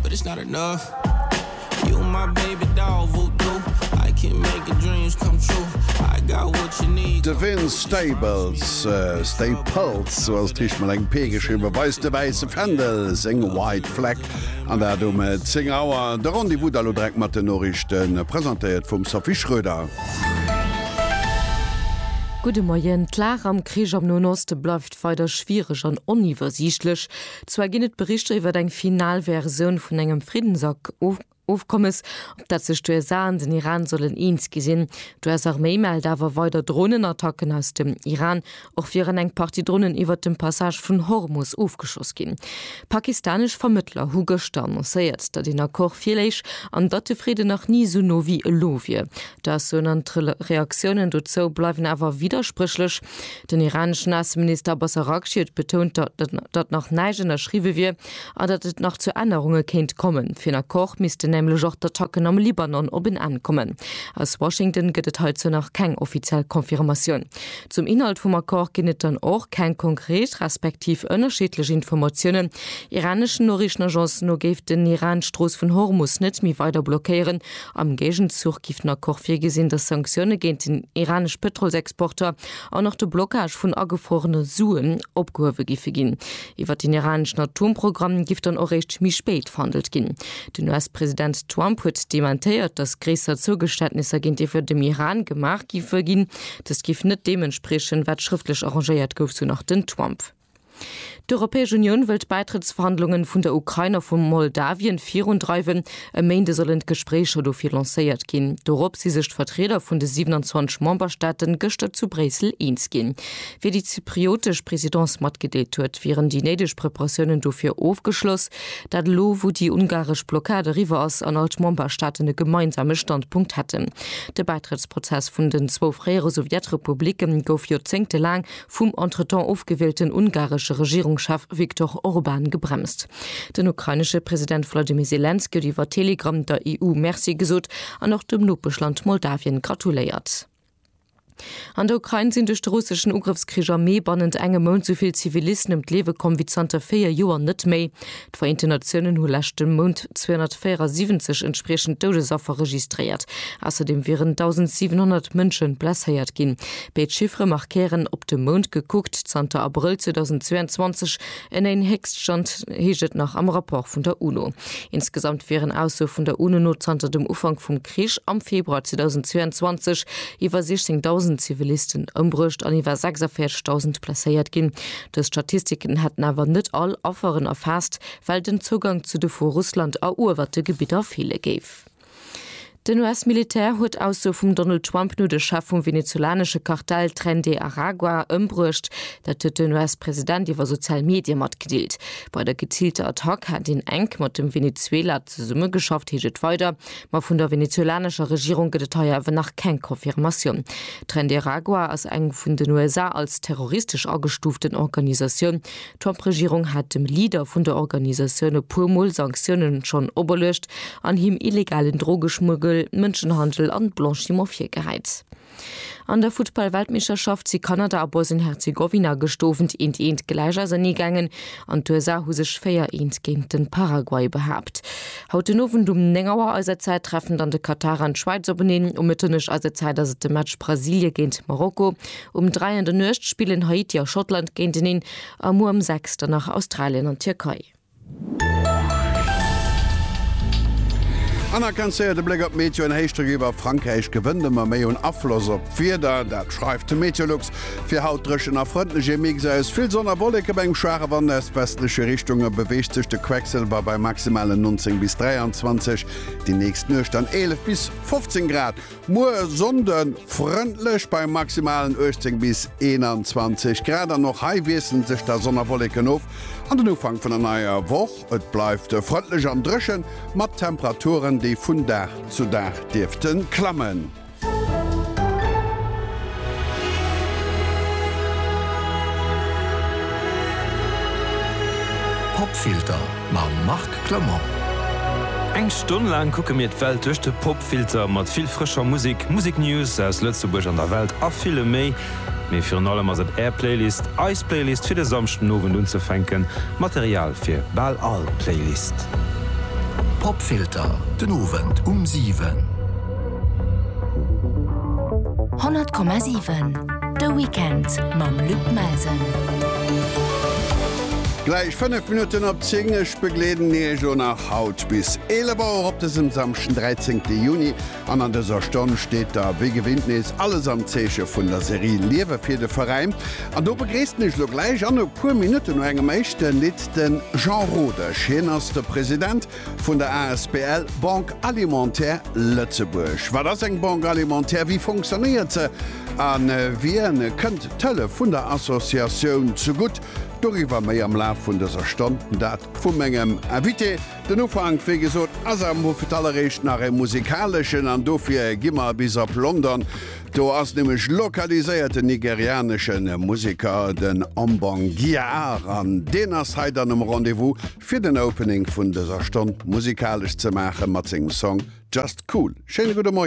But it's not enough You my baby doll voodoo I can make your dreams come true I got what you need De Vince Stables, Staples, sou ass d'richteg mat engem P geschriwwen, weist de wäisse Fändel, seng White Flag, an dat um 10 Auer. De Rendez-vous da lo direkt mat den Noriichten, presentéiert vum Sophie Schröder. Gudde Moien. D'Lag am Krich am Noen Oste bleift weider schwiereg an oniwwersiichtlech. Zwar ginn et Berichter iwwer eng final Versioun vun engem Friddensofkommes, op dat sech d'USA an den Iran sollen eens gi sinn. D'US-Arméi mellt awer weider Dronenattacken aus dem Iran. Och wieren eng Partie Dronen iwwert dem Passage vun Hormus ofgeschoss ginn. Pakistanesch Vermëttler hu gëschter annoncéiert, datt een Accord virléich an datt de Fridden nach ni esou no wéi elo wier. D'Aussoen an d'Reaktiounen dozou bleiwen awer widderspréchlech. Den iraneschen Ausseminister Abbas Araghchi huet betount, datt nach näischt ënnerschriwwe wier an datt et nach zu Ännerunge kéint kommen. Fir en Accord missten nämlech och d'Attacken am Libanon op en Enn kommen. Aus Washington gëtt et heizou nach keng offiziell Confirmatioun. Zum Inhalt vum Accord ginn et dann och keng konkret respektiv ënnerschiddlech Informatiounen. Iraneschen Noriichtenagencen no géif den Iran d'Strooss vun Hormus net méi weider blockéieren, Am Géigenzuch géif den Accord virgesinn, datt Sanktioune géint den iranesch Pëtrolsexporter an och de Blockage vun agefruerene Suen opgehuewe géife ginn. Iwwer den iraneschen Atomprogramm géif dann och réischt méi spéit verhandelt ginn. Den US-President Trump huet dementéiert, datt gréisser Zougeständnisser géintiwwer dem Iran gemaach géife ginn. Dëst géif net deem entspriechen, wat schrëftlech arrangéiert gouf, sou nach den Trump. D'Europäesch Unioun wëll d'Bäitrëttsverhandlungen vun der Ukrain a vu Moldawien virundreiwen. E Méinde sollen d'Gespréicher dofir lancéiert ginn. Dorop si sech d'Vertrieder vun de 27 Memberstaaten gëschter zu Bréissel eens ginn. Wéi déi zypriotesch Presidence matgedeelt huet, wieren déi néideg Preparatiounen dofir ofgeschloss. Dat elo, wou déi ungaresch Blockad eriwwer ass an all d'Memberstaaten e gemeinsame Standpunkt hätten. De Bäitrëttsprozess vun den zwou fréiere Sowjetrepublicke gouf joerzéngtelaang vum entretemps ofgewielten ungaresche Regierungschef Viktor Orban gebremst. Den ukrainesche President Wladimir Selenskyj huet iwwer Telegram der EU Merci gesot an och dem Nopeschland Moldawien gratuléiert. An der Ukrain sinn duerch de russeschen Ugrëffskrich am Mee bannent engem Mount souvill Zivilisten ëm d'Liewe komm wéi zanter véier Joer net méi. D'Vereenten Natiounen hu leschte Mount 274 entspriechend Doudesaffer registréiert. Ausserdeem wieren 1.700 Mënsche blesséiert ginn. Béid Chiffere markéieren, op de Mount gekuckt, zanter Abrëll 2022 en néien Héchststand, heescht et nach am Rapport vun der UNO. Insgesamt wieren, Ausso vun der UNO no, zanter dem Ufank vum Krich am Februar 2022 iwwer 16.000 Zivilisten ëmbruecht an iwwer 46.000 blesséiert ginn. Dës Statistiken hätten awer net all Afferen erfaasst, well den Zougang zu de vu Russland eruewerte Gebidder feele géif. Den US-Militär huet d'Aussoe vum Donald Trump no de Chef vum venezolanesche Kartell Tren de Aragua ëmbruecht. Dat huet den US-President iwwer sozial Medie matgedeelt. Bei der geziilter Attack hätt een enk mat dem Venezuela zesummegeschafft, heescht et weider. Ma vun der venezuelanescher Regierung gëtt et hei awer nach keng Confirmatioun. Tren de Aragua ass eng vun den USA als terroristesch agestuuften Organisatioun. D'Trump-Regierung hat dem Leader vun der Organisatioun e puer Mol Sanktiounen schonn operluecht an him illegalen Drogeschmuggel, Mënschenhandel an Blanchiment virgehäit. An der Futtball-Weltmeeschterschaft si Kanada a Bosnien-Herzegowina gestoweent eent eent gläich ausernee gaangen an d'USA hu sech 4 eent géint den Paraguay behaapt. Haut den Owend um 9 Auer eiser Zäit treffen dann de Katar an d'Schwäiz openeen. Um Mëtternuecht eiser Zäit ass et de Match Brasilien géint Marokko. Um 3 an der Nuecht spillen Haiti a Schottland géinteneen a muer um 6 dann nach Australien an d'Tierkei. An nach ganz séier de Bléck op d'Meteo, En Héichdrock iwwer Frankräich gewënnt ëmmer méi un Afloss op d'Wieder, dat schreift de Meteolux. Fir haut dréchen a frëndlech, ee Mix aus vill Sonn a Wolleke bei engem schwaache Wand aus westleche Richtung. E beweegt sech de Quecksëlwer bei maximalen 19 bis 23, déi nächst Nuecht dann 11 bis 15 Grad. Muer Sonnde frëndlech bei maximalen 18 bis 21 Grad an och hei wiesselen sech da Sonn a Wolleken of an den Ufank vun der neier Woch. Et bleift frëndlech an dréchen mat Temperaturen, déi vun Dag zu Dag dierfte klammen. Popfilter. Mam Marc Clement. Eng Stonn laang kucke mir d'Welt duerch de Popfilter, mat vill frëscher Musek, Museknews aus Lëtzebuerg an der Welt a villem méi. Mee virun allem ass et Är Playlist, eis Playlist fir de Samschden Owend unzefänken, Material fir bal all Playlist. Popfilter, den Owend um 7. 100,7 de Weekend mam Luc Melsen. Gläich 5 Minutten op 10, ech begleeden Iech o nach haut bis 11 Auer op dësem Samschden 13 Juni an an dëser Stonn steet da wéi gewinnt nees alles am Zeeche vun der Serie Liewe fir de Veräin an do begreessen ech lo gläich an e puer Minutten no engem éischte Lidd den Jean Rodesch, hien ass de President vun der asbl Banque Alimentaire Lëtzebuerg. Wat ass eng Banque Alimentaire, wéi fonctionnéiert se a wien kënnt d'Hëllef vun der Associatioun zegutt? Doriwwer méi am Laf vun dëser Stonn, dat vu mengem Invité. Den Ufank, wéi gesot, ass am Wuft, alleréischt nach e musikaleschen an dofir gi mer bis op London. Do ass nämlech lokaliséiert den nigerianesche Museker, den Ombong Giaar, an deen ass hei dann um Rendez-vous fir den Opening vun dëser Stonn musikalesch ze maache mat sengem Song Just Cool. Schéine gudde Moien.